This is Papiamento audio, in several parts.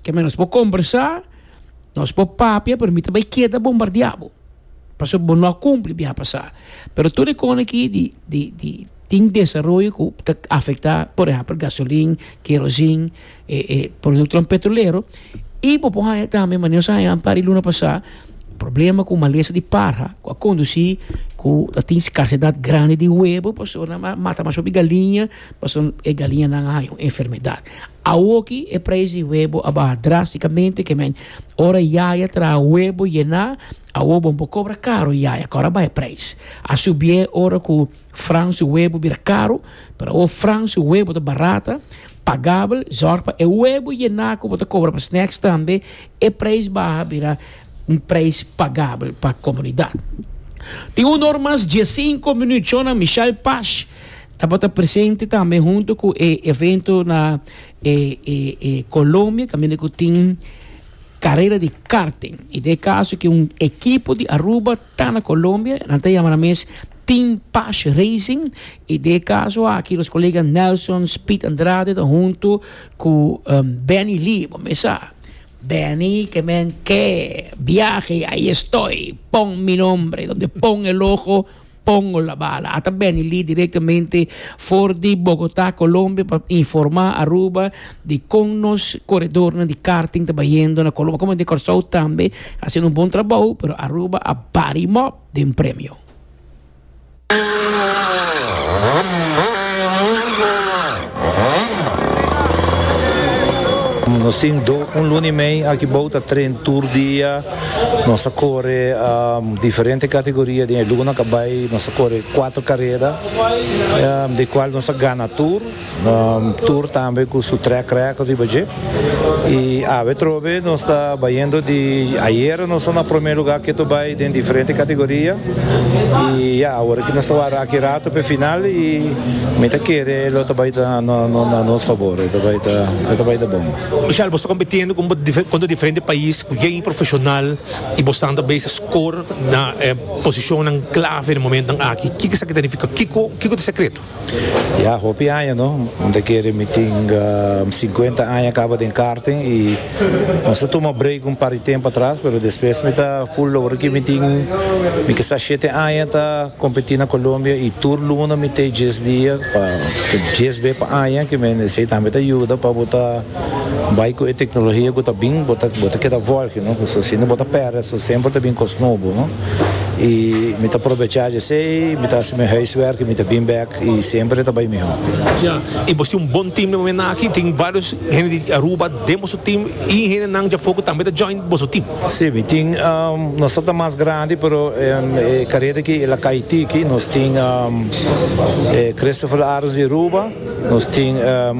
Ke men nos por kombersá, nos por papia, pero mi ta bai keda bombardiá bo, pasobra bo no a kumpli biaha pasá. Pero tur e kosnan aki di di di tin desaroyo ku ta afektá, por ehèmpel, gasolin, kerosin, e e produktonan petrolero, i bo por haña tambe mane nos a haña un par di luna pasá, problema ku malesa di parha ku a kondusí ku ta tin skarsedat grandi di webo, pasobra nan a mata mas hopi galiña, pasobra e galiñanan a haña un enfermedat. Awoki e prijs di webo a baha drástikamente, ke men ora yaya traha webo yená, awo bo por kobra karu yaya, kòrda bai e prijs. A subié ora ku Fran su webo bira karu, pero awo Fran su webo ta barata, pagabel. Zòrg pa e webo yená ku bo ta kobra pa snacks tambe e prijs baha bira un prijs pagabel pa komunidat. Tin un or mas dies sinko minüt, Jonah Michel Pash. Tabata presente tambe hunto cu e evento na e, e, e Colombia, caminda cu tin carrera di karting. Y de caso que un equipo di Aruba ta na Colombia, nan ta yama nan mes Team Pash Racing. Y de caso aki nos colega Nelson Speed Andrade ta hunto cu um, Benny Lee, bo me sa. Benny, que men que viaje, ahí estoy, pon mi nombre, donde pon el ojo, Pongo la bala a ta beni li directamente for di Bogotá, Colombia pa informa Aruba di con nos corredornan di karting ta bayendo na Colombia, como den Kòrsou tambe ta haciendo un bon trabou pero Aruba a bari mòp den premio. Nos tin un luna y mei aki bou ta tren tur dia. Nos a kore diferente kategoria den e lunanan ku a bai. Nos a kore kuater kareda den kual nos a gana tur. Tur tambe ku su trek record riba dje. I awe trobe nos ta bayendo di ayera nos a na prome lugar ketu bai den diferente kategoria. I ya awor aki nos ta wara aki ratu p'e final i mi ta kere lo ta bai ta na nos fabor. E ta bai ta bon. Michelle, bo sta kompitiendo ku kontra diferente pais ku yai profeshonal i bo stan ta bai sa skor na e posishonnan klave na momentonan aki. Kiko esaki ta nifiká? Kiko kiko ta e sekreto? Ya, hopi aña no. Mi ta kere mi tin sinkuenta aña kaba den karting i nos ta tuma breik un par di tempu atras, pero despues mi ta ful logra ku mi tin, mi ke sa shete aña ta. Competi na Colombia y tur luna mite djes dia pa djes be pa aña que me esey tambe ta yuda pa bo ta bay cu e tecnologia cu ta bin bo ta keda volge no pasobra si no bo ta perde so semper ta bin cos nobo no y mi ta probecha dje esey mi ta haci mi huiswerk y mi ta bin bek y semper ta bay miho. Ya y bo tin un bon team den momen aki tin varios hende di Aruba den boso team y hende nan djafo cu tambe ta join boso team. Si, mi tin, nos ta ta mas grandi pero e kareta aki el a kai tiki, nos tin e Christopher Aros di Aruba, nos tin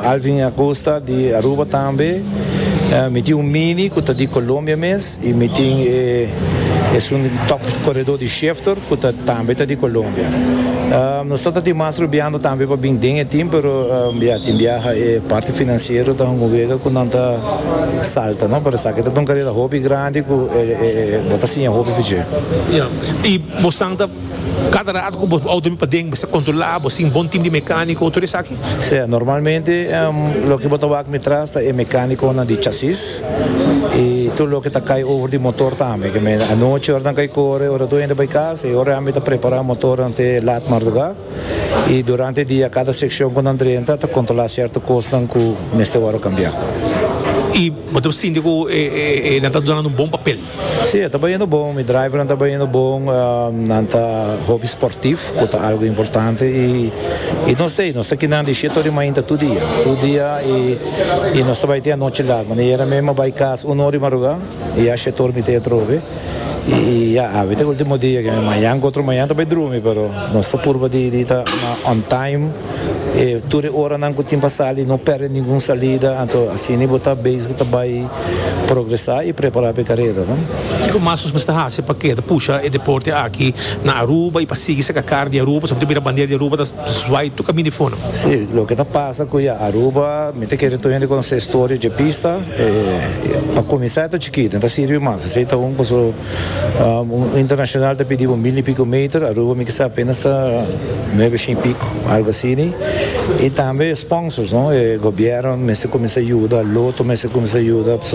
Alvin Acosta di Aruba tambe, mi tin un Mini ku ta di Colombia mes y mi tin e esun di top koredo di Schefter ku ta tambe ta di Colombia. Nos ta ta tin mas rubiando tambe pa bin den e tim pero ya tin biaha e parti finansiero ta hunga wega ku nan ta. Salta no pero esaki ta ta un careta hopi grandi cu e bo ta siña hopi feché. Ya y bo stan ta cada rato cu bo auto mi paden mester controla bo sin bon team di mecanico tur esaki. Sea normalmente loke bo ta wak mi tras ta e mecaniconan di chasis y tur loke ta cay over di motor tambe ke me anochi ora nan cay core ora tur hende bay casa y ora ami ta prepara motornan te lat marduga. y durante dia cada seccion cu nan drenta ta controla cierto cosnan cu mester worde cambiá. Y bo ta sinti cu e nan ta dunando un bon papel? Sí, e ta bayendo bon, mi drivernan ta bayendo bon, nan ta hopi sportief cu ta algo importante y nos ey, nos ta kina di siete ora di mainta tur dia, tur dia y nos ta bay tin anochi laat, manera ayer mim a bay cas uno ora di marugá y ya siete ora mi ta atrobe. Y ya, awe ta e ultimo dia que mañan cu otro mañan ta bay drumi, pero nos ta purba di di ta na on time e tur e oranan cu tin pa sali, no perde ningun salida, anto asina bo ta bezig ta bay progresa y prepara pa e carera, no. Kico mas nos mester haci pa keda pusha e deporte aki na Aruba y pa sigui saca car di Aruba? Nos a mester mira bandera di Aruba ta. Zwai tu kaminda e fono. Sí, loke ta pasa ku ya Aruba, mi ta kere tur hende konosé storia dje pista. E pa kuminsá e ta chikitu, no ta sirbi mas. Esei ta un koso un internashonal ta pidi bo mil i piko meter, Aruba mi kisa apenas ta nuebe shen i piko, algu asini. I tambe sponsors, no, e gobièrnu mester kuminsá yuda, loto mester kuminsá yuda, pasobra